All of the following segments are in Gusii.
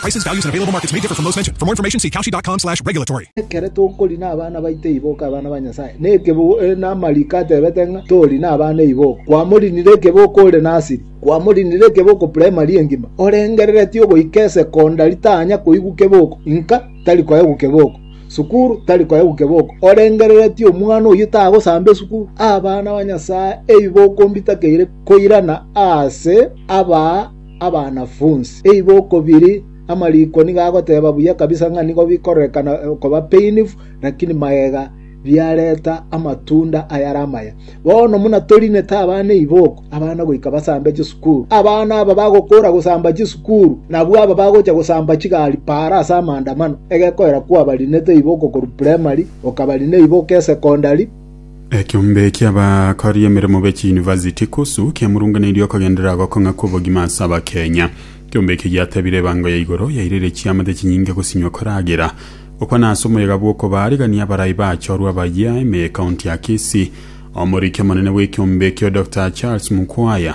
Prices, values, and available markets may differ from those mentioned. For more information, see kalshi.com slash regulatory. Ekero tokori nabana baito eiboko abana ba Nyasaye, na ekeboko eh, na amariko atebete ng'a tori nabana eiboko. Kwamorinire ekeboko ore nasiri, kwamorinire ekeboko primary engima, orengereretie ogoika esecondary tanya koigwa keboko, inka tari koegwa keboko sukuru tari koegwa keboko orengereretie omwana oyio tagosamba esukuru abana ba nyasaye eiboko mbitakeire koirana ase aba abanafunsi. Eigo okobiri, amariko nigo agoteba buya kabisa ng'a nigo bikororekana koba painful, lakini magega biareta amatunda ayare amaya. Bono buna torinete abana eiboko, abana goika basambe chisukuru. Abana aba bagokora gosamba chisukuru, nabwo aba bagocha gosamba chigari para ase amaandamano, egekoera kwabarinete eiboko korwa primary, okabarina eiboko esekondari, Ekeombe ki'abakori emeremo be chiyunivasiti KUSU kiamurunganeirie okogenderera gokong'a kw'obogima ase Abakenya. Ekeombe eke giatebire ebango ya igoro yairire chiamate chinyinge gosinywa koragera gokwana ase omoyega bw'okobaarigania abarai bachorwa bayia ime y'ekaunti ya Kisii. Omoriki omonene bw'ekeombe ekio Doctor Charles Mukwaya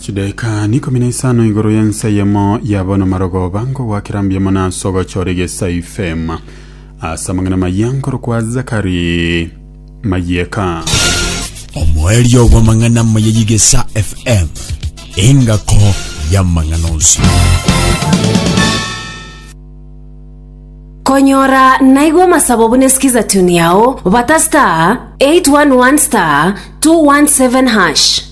Chidaika n'ikomi na isano igoro y'ensa eyemo yaba n'amarogoba nkogwakera mbiamo nase ogochora egesa ifema ase amang'ana mayia nkorokwa Zakari Mayeka. Omoerio bw'amang'ana amaya y'egesa FM, engako y'amang'ana onsi. Konyora naigo amasabo buna sikiza tune yao bata star 811 star 217 hash.